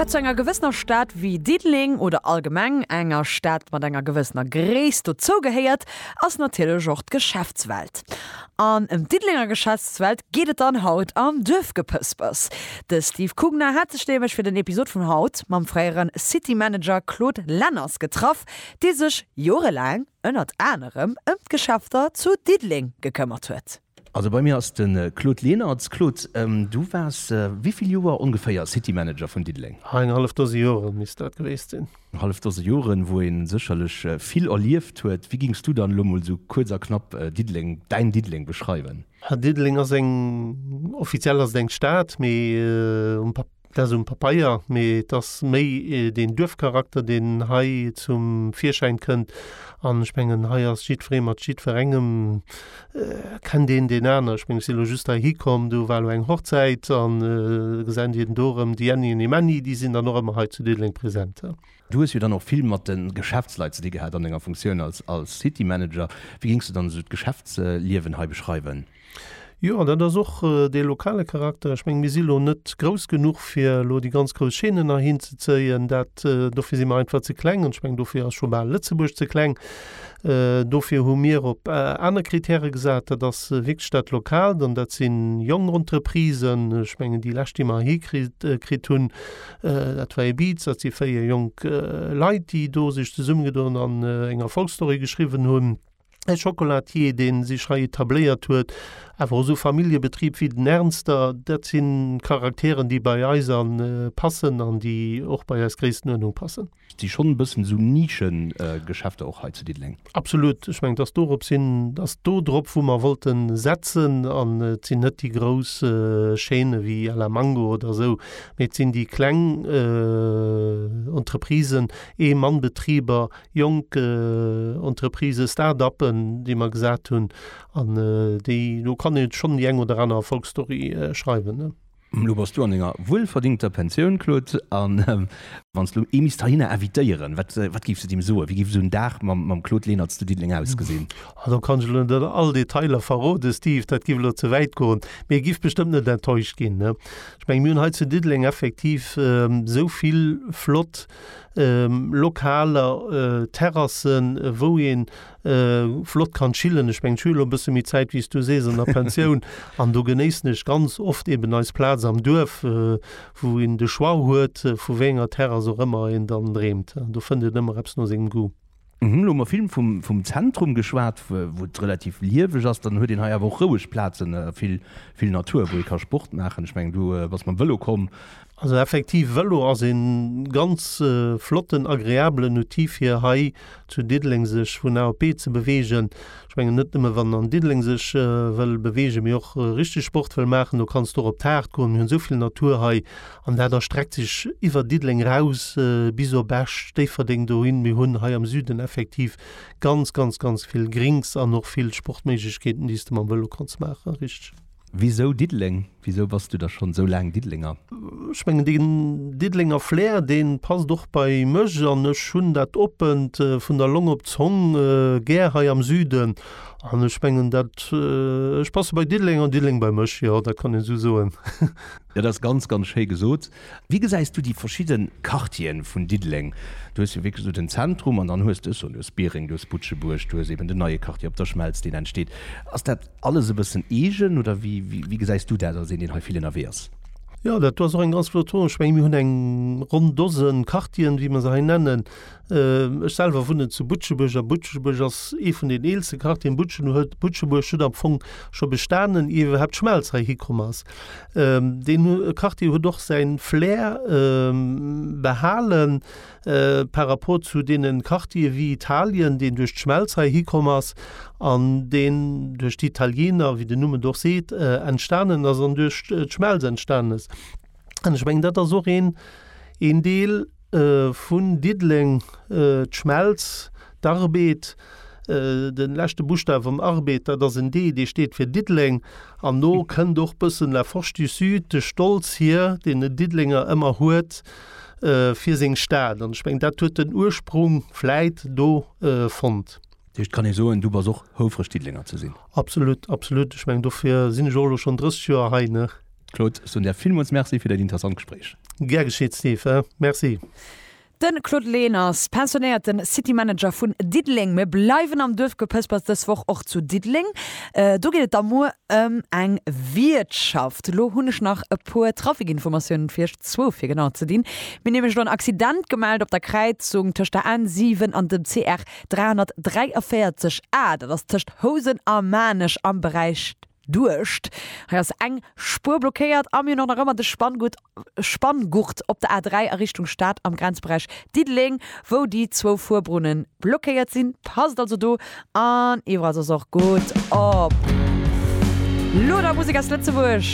Wat zu enger gewëssener Stad wéi Diddeleng oder allgemeng enger Stad mat enger gewëssener Gréisst dozougehéiert, ass natierlech och d'Geschäftswelt. An ëm d'Diddelenger Geschäftswelt geet et dann haut am Duerfgepëspers. De Steve Kugner hat sech nämlech fir den Episod vun haut mam fréiere City Manager Claude Lenners getraff, dee sech jorelaang ënnert anerem ëm d'Geschäfter zu Diddeleng gekëmmert huet. Also bei mir ass de Claude Lenert. Claude, du waars wéi vill Joer ongeféier City Manager vun Diddeleng? Ah, eng hallef Dose Joren misst dat gewiesst sinn. Eng hallef Dose Joren, wou ee sécherlech vill erlieft huet. Wéi géings du dann elo mol esou kuerz a knapp Diddeleng, däin Diddeleng beschreiwen? Diddeleng ass eng, offiziell ass et eng Stad, mee um. Dat ass um Papeier, mee et ass méi deen Duerfcharakter, deen hei zum Virschäin kënnt. An ech mengen, hei ass jiddweree mat jiddwerengem, kennt een deen aner. Ech mengen, ech si elo just heihi komm, do war elo eng Hochzäit an gesent ierden do erëm déi Änni an dee Männi, déi sinn dann och ëmmer hei zu Diddeleng present. Du hues jo dann och vill mat de Geschäftsleit ze di gehat an denger Funktioun als City Manager. Wéi géings du dann esou d'Geschäftsliewen hei beschreiwen? Jo, an dat ass och dee lokale Charakter. Ech mengen, mir si lo net grouss genuch, fir elo déi ganz grouss Chaînen heihin ze zéien. Dat, dofir si mer einfach ze kleng. An ech mengen, dofir ass scho bal Lëtzebuerg ze kleng. Dofir hu mir op aner Kritäre gesat. Dat ass wierklech dat Lokaalt. An dat si jonk Entreprisen. Ech mengen, déi lescht, déi mer heihi kritt, kritt hunn, dat war Ebiz. Dat si véier jonk Leit, déi do sech zesummegedoen an eng Erfolgsstory geschriwwen hunn. e Chocolatier, deen sech hei etabléiert huet, awer och esou Familljebetrib wéi den Ernster, dat si Charakteren, déi bei eis an passen an déi och bei eis Gréisstenuerdnung passen. Et si schonn e bëssen esou Nischegeschäfter och hei zu Diddeleng. Absolut. Ech mengen, et ass dorop sinn, et ass do drop, wou mer wollte setzen an et sinn net déi grouss Chaîne wéi à la Mango oder esou, mee et sinn déi kleng Entreprisen, Ee-Mann-Betriber, jonk Entreprisë, Start-uppen, déi mer gesat hunn, an déi, do kann ee schonn déi eng oder aner Erfolgsstory schreiwen. Elo bass du an denger wuelverdingter Pensioun, Claude, a wann s de elo ee misst heihinner invitéieren, wat, wat géifs de deem soen? Wéi géif esou en Dag mam, mam Claude Lenert zu Diddeleng ausgesinn? Ah, do kann ech elo net all Detailer verroden, Steve, dat géif elo ze wäit goen, mee e géif bestëmmt net enttäuscht ginn. Ech mengen, mir hunn hei zu Diddeleng effektiv esou vill flott lokaler Terrassen, wou ee flott kann chillen. Ech mengen, ech hunn elo e bësse méi Zäit, wéi s du sees, an der Pensioun. An do genéissen ech ganz oft eeben eis Plaz am Duerf, wou een de Choix huet, vu wéi enger Terrass och ëmmer een dann dreemt. Do fënnt een ëmmer eppes no sengem Goût. Mir hunn elo vill vum Zentrum geschwat, wou et relativ lieweg ass. Dann huet een hei awer och roueg Plazen, vill Natur, wou ee ka Sport maachen. Ech mengen, du bass mam Vëlo komm. Also effektiv, Vëlo ass ee ganz flotten, agreabelen Outil, fir hei zu Diddeleng sech vun A op B ze beweegen. Ech mengen, net nëmme wann an Diddeleng sech wëll beweegen, mee och richteg Sport wëll maachen, do kanns du och op d'Haard goen. Mir hunn esou vill Natur hei. An dat erstreckt sech iwwer Diddeleng eraus bis op Esch, Déifferdeng dohin. Mir hunn hei am Süden effektiv ganz, ganz, ganz vill Grinks an och vill Sportméiglechkeeten, déi s de mam Vëlo kanns maachen. Richteg. Wisou Diddeleng? Wisou bass du da schonn esou laang Diddelenger? Ech mengen, deen Diddelenger Flair, dee passt och bei mech. An ech hunn dat Oppent vun der Long op d'Zong gär hei am Süden. An ech mengen dat, ech passe bei Diddeleng an Diddeleng bei mech, jo, dat kann een esou soen. Dat ass ganz, ganz schéi gesot. Wéi gesäis du déi verschidde Quartieren vun Diddeleng? Du hues jo wierklech esou den Zentrum an dann hues de, ech soen, du hues Biereng, du hues Butschebuerg, du hues eben den neie Quartier op der Schmelz, deen entsteet. Ass dat alles e bëssen eegen oder wéi, wéi gesäis du dat als een, deen hei vill ënnerwee ass? Jo, dat do ass och eng ganz flott Fro. Ech mengen, mir hunn eng ronn Dose Quartieren, wéi mer se hei nennen. Ech selwer wunnen zu Butschebuerg a Butschebuerg ass ee vun den eelste Quartieren. Butschen huet, Butschebuerg huet am Fong scho bestanen, ier iwwerhaapt d'Schmelz hei hikomm ass. Deen Quartier huet och säin Flair behalen par rapport zu deene Quartiere wéi Italien, deen duerch d'Schmelz hei hikomm ass an deen duerch d'Italiener, wéi den Numm et och seet, entstanen ass an duerch d'Schmelz entstanen ass. An ech mengen, dat ass och een, een Deel vun Diddeleng, d'Schmelz, d'Arbed, de leschte Buschtaf am Arbed, dat ass en D, dee steet fir Diddeleng. An do kënnt och bëssen La Force du Sud, de Stolz hier, deen en Diddelenger ëmmer huet fir seng Stad. An ech mengen, dat huet den Ursprung vläit do fonnt. Dat heescht, kann ee soen, du bass och houfreg Diddelenger ze sinn? Absolut, absolut. Ech meng, dofir sinn ech och elo schonn 30 Joer hei, ne? Claude, ech soen der villmools Merci fir dat interessant Gespréich. Gär geschitt, Steve. Merci. De Claude Lehn ass pensionéierte City Manager vun Diddeleng. Mir bleiwen am Duerfgepëspers, dës Woch och zu Diddeleng. Do geet et da muer ëm eng Wiertschaft. Elo hunn ech nach e puer Trafikinformatiounen fir Iech, zwou fir genau ze dinn. Mir hunn nämlech elo en Accident gemellt op der Kräizung tëscht der N7 an dem CR 343 A, dat ass tëscht Housen a Maarnech am Beräich Duerscht. Hei ass eng Spuer blockéiert a mir hunn och nach ëmmer de Spanngurt, Spanngurt op der A3 a Richtung Stad am Grenzberäich Diddeleng, wou déi zwou Fuerbrunne blockéiert sinn. Passt also do an iwwerall soss och gutt op. Lo da Musek aus Lëtzebuerg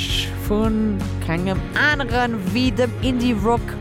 vu kengem anere wéi dem Indie Rock.